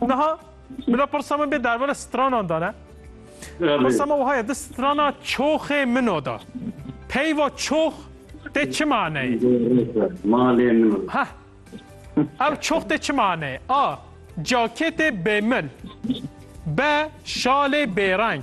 Niha bila pirsa min bê dervara stranan da ne? Pirsa me wiha ye di strana çoxê min o da. Peyva çox tê çi maneyê? Malê min o. Heh. Ev çox tê çi maneyê? A. Caketê bêmil. B. Şalê bêreng.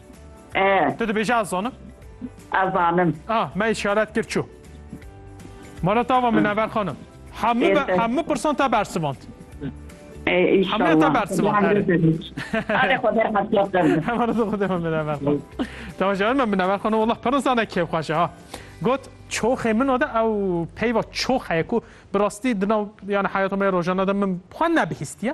Tu dibêje ez zanim? Ez zanim. Ah, me işaret kir çû. Mala tava min ever xanim. Hemû hemû pirsan te bersivand. Hemû te bersivand. Hare xwe der hetlap der. Hemen de xwe der min ever xan. Tava jawir min ever xan. Wallah pirsan ne kêf xweşe ha. Got çoxê min o de ew peyva çox heye ku bi rastî di nav yani heyata me rojana de min xwe nebihîstiye.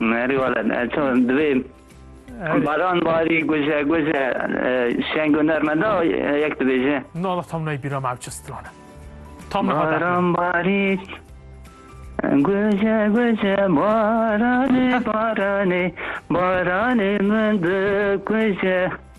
Merî wale çawa divê baran barî guje guje şeng û nermeda yek dibêje. Nala tam nayê bîra me ev çi stran e. Tam niha derxî. Baran barî guje guje baranê baranê baranê min dikuje.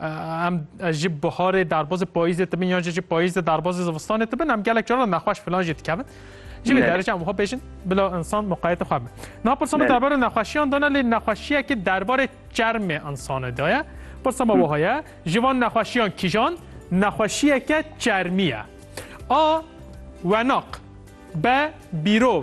Em ji biharê derbazê payîzê dibin yan jî ji payîzê derbazê zivistanê dibin em gelek cara nexweş filan jî dikevin. Ji vê derece em wiha bêjin bila insan muqayete xwe bin. Na pirsa min derbarê nexweşiyan dana lê nexweşiyekê derbarê çermê insanê da ye. Pirsa me wiha ye ji van nexweşiyan kîjan nexweşiyeke çermî ye. A wenak be bîrov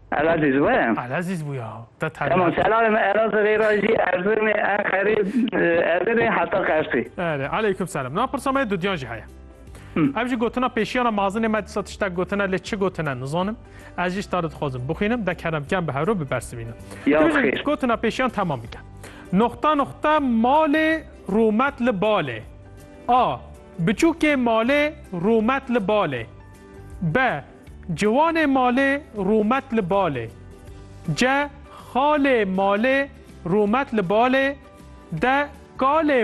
Elazîz bûye. Elazîz bûye ha. Te tevî. Tamam selamê me Elazirê ra jî Erzirmê, Enqerê, Edirnê heta Qersê. Erê aleyküm selam. Na pirsa me dudiyan jî heye. Ev jî gotina pêşiyana mazinê me disa tiştek gotine lê çi gotine nizanim. Ez jî stare dixwazim bixwînim de kerem kem bi hero bibersivînim. Ya xêr. Gotina pêşiyan tamam bike. Noxta noxta malê rûmet li balê. A. Biçûkê malê rûmet li balê. B. Ciwanê malê rûmet li balê. Ce xalê malê rûmet li balê, de kalê